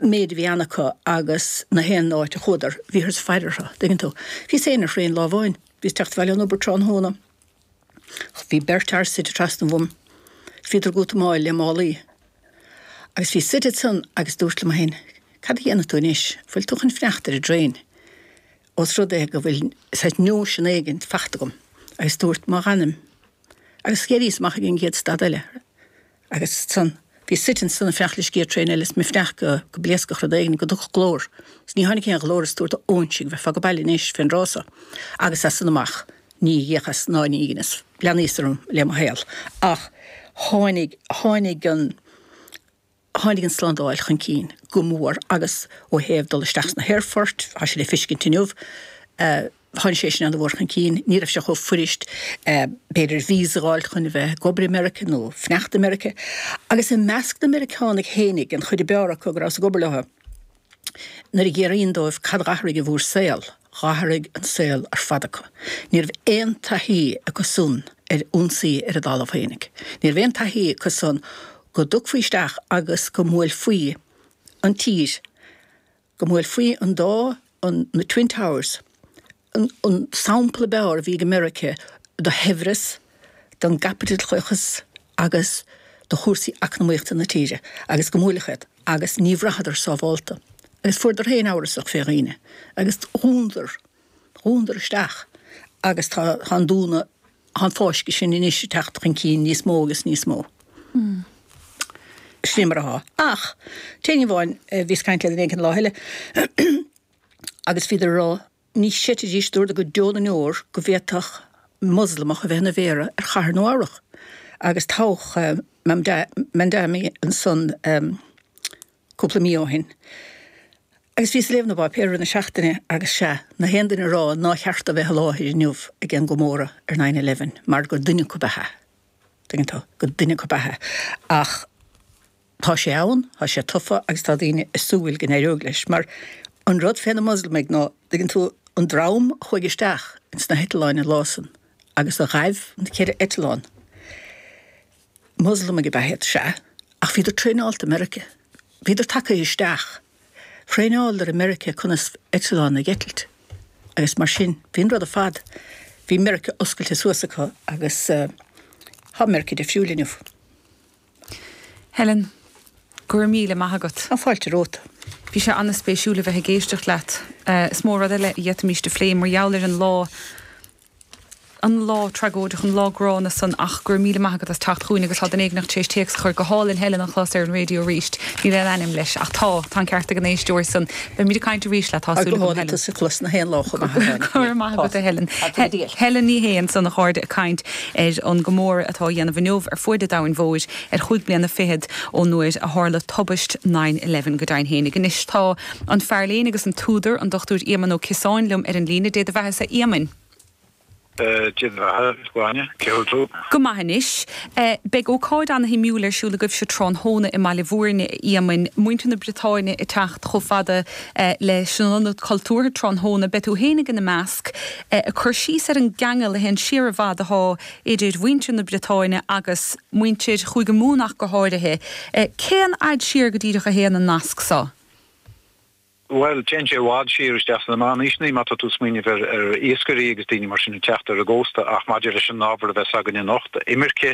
méid a bhí ann acu agus na haon áit a chuadar bhíothas ag faire orthu, an dtuigeann tú. Bhíos féin ar thraein lá amháin, bhíos ag teacht abhaile ón obair tráthnóna, bhí beirt fhear suite trasna uaim, bhíodar ag útamáil le málaí. Agus bhíos suite ansan agus dúrt liom féin, cad a dhéanfaidh tú anois, an bhfuil tú chun fanacht ar an dtraein, os rud é go bhfuil saghas nóisean éigin faighte agam, agus dúrt má fhanaim. Agus d'éiríos amach ag an gcéad stad eile. Agus san, bhíos suite ansan ag fanacht leis an gcéad traein eile is mé ag fanacht go go bpléascfadh rud éigin, go dtiocfadh glór. Is ní tháinig aon ghlór is dúrt, a óinsigh, bheifeá age baile anois fén dtráth so. Agus as san amach, ní fhéachas ná ní dheineas. Leanaíos orm le mo shaol. Ach tháinig, tháinig an, tháinig an tslándáil chun cinn go mór agus ó thaobh dul isteach sna haerfoirt, tá sé le feiscint inniu, eh, Tháinig sé sin an-mhór chun cinn, ní raibh sé chomh fuirist, b'fhéidir, víosa a fháil chun a bheith ag obair i Meiriceá nó fanacht i Meiriceá. Agus i measc na Meiriceánach féinig, an chuid ab fhearr acu go rabhas ag obair leo, nuair a fhiafraínn dóibh cad a dh'athraigh bhur saol, dh'athraigh an saol ar fad acu. Ní raibh aon taithí acu san ar ionsaí ar a dtalamh féinig. Ní raibh aon taithí acu san go dtiocfaí isteach agus go mbuailfí an tír go mbuailfí an dá, na Twin Towers an sampla ab fhearr a bhí ag Meiriceá do shaibhreas, don gcaipitleachas agus do chúrsaí eacnamaíochta na tíre, agus go mbuailfeadh iad, agus ní bhraitheadar sábhálta. Agus fuaireadar féin amhrasach fé dhaoine, agus dhúnadar. dhúnadar isteach agus tá an dúnadh, tá an fáisceadh sin anois ag teacht chun cinn níos mó agus níos mó. Sin mar atá. Ach, éinní amháin, bhíos ag caint le duine éigin an lá eile agus bhíodar ag rá, ní chreidfidís, dúradar go deo na ndeor go bhféadfadh Moslamach a bheith ina mhéara ar chathair Nua Eabhrac agus toghadh Mamdani ansan. cúpla mí ó shin agus bhíos ag léamh na bpáipéar na seachtaine agus sea, na haon duine ag rá nár cheart dó bheith i láthair inniu ag aon gcomóradh ar nine eleven mar gur duine acu ab ea, tuigeann tú, gur duine acu ab ea. Ach tá sé ann, tá sé tofa agus tá daoine ag súil go n-éireoidh leis mar an rud fé na Moslamaigh ná, tuigeann tú, an dream a chuaigh isteach ins na heitleáin an lá san agus a ghaibh na ceithre eitleán, Moslamaigh ab ea iad, sea, ach bhíodar traenáilte i Meiriceá. Bhíodar tagtha isteach. Thraenáileadar i Meiriceá conas eitleáin a eitilt agus mar sin. Bhí an rud ar fad, bhí Meiriceá oscailte suas acu agus tá Meiriceá difriúil inniu. Helen, go raibh míle maith agat. Tá fáilte romhat. Bhí sé an-spéisiúil a bheith ag éisteacht leat. Is mó rud eile a d'fhéadfaimis a phlé mar gheall ar an lá an lá tragóideach, an lá gránna san ach go raibh míle maith agat as teacht chugainn agus tá duine éigint tar éis téacs a chur go hálainn Helen a chlos ar an raidio arís. Níl aon ainm leis ach tá, tá an ceart ag an éisteoir san. Beimid ag caint arís leat, tá súil agam Helen. Go raibh maith agat a Helen. Helen Ní Shé ansan a chairde ag caint ar an gcomóradh atá á dhéanamh inniu ar fuaid an domhain mhóir ar chúig bliana fichead ón uair a tharla tubaist nine eleven, go deimhin fhéinig. Anois tá. An fear léinn agus an t-údar, an Dr Éamonn Ó Ciosáin, liom ar an líne. Dé do bheathasa, a Éamoinn. Dé do bheatha, a Ghráinne. Cén chaoi a bhfuil tú? Go maith anois. Beidh ócáid ana-shuimiúil ar siúl agaibhse tráthnóna i mBaile Bhúirne, a Éamoinn. Muintir na Briotáine ag teacht chomh fada leis an Ionad Cultúrtha tráthnóna, beidh tú féin ag ina measc, ag cur síos ar an gceangal a théann siar i bhfad atá idir mhuintir na Briotáine agus muintir Chúige Mumhan ach go háirithe. Cén fhad siar go díreach a théann an nasc seo? Bhuel, téann sé i bhfad siar isteach sna Meánaoiseanna, má tá tú ag smaoineamh ar iascairí agus daoine mar sin ag teacht ar an gcósta, ach maidir leis an ábhar a bheas againn anocht, imirce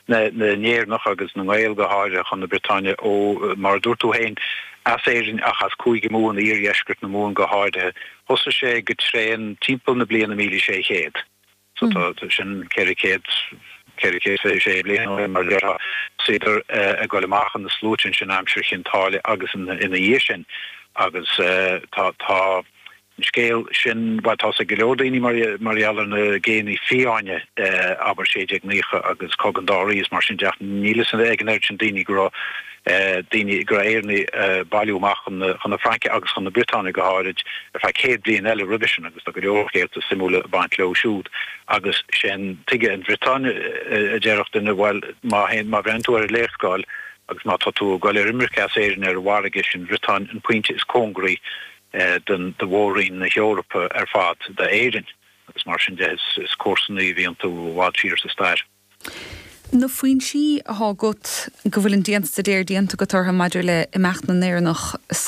na nÉireannach, agus na nGael go háirithe, chun na Briotáine ó, mar a dúirt tú féin, as Éirinn ach as Cúige Mumhan, iardheisceart na Mumhan go háirithe. Thosaigh sé go tréan timpeall na bliana míle sé chéad. Sea, tá sin ceithre chéad, ceithre chéad fiche sé bliain ó shin, mar a déarfá. Thosaíodar ag goil amach ina sluaite ansin aimsir Chinn Táile agus ina dhiaidh sin. Agus tá, tá an scéal sin, bhuel, tá's ag go leor daoine mar, mar gheall ar na géanna fiáine, abair, sé déag naocha agus Cogadh an Dá Rí is mar sin de ach níl a fhios ag an oiread sin daoine go raibh, daoine go raibh Éireannaigh ag bailiú amach chun na Fraince agus chun na Briotáine go háirid ar feadh céad bliain eile roimhe sin agus tá go leor scéalta suimiúla ag baint leo siúd agus sea, tuige an Bhriotáin? a déarfadh duine, bhuel má théann, má bhreathnaíonn tú ar an léarscáil agus má tá tú ag dul ar imirce as Éirinn ar an bhfarraige, sé'n Bhriotáin an pointe is cóngaraí do mhór-roinn na hEorpa ar fad d'Éirinn agus mar sin de is comharsanaí a bhí iontu i bhfad siar sa stair. Na foinsí atá agat go bhfuil an dianstaidéar déanta agat orthu maidir le himeacht na nÉireannach sa.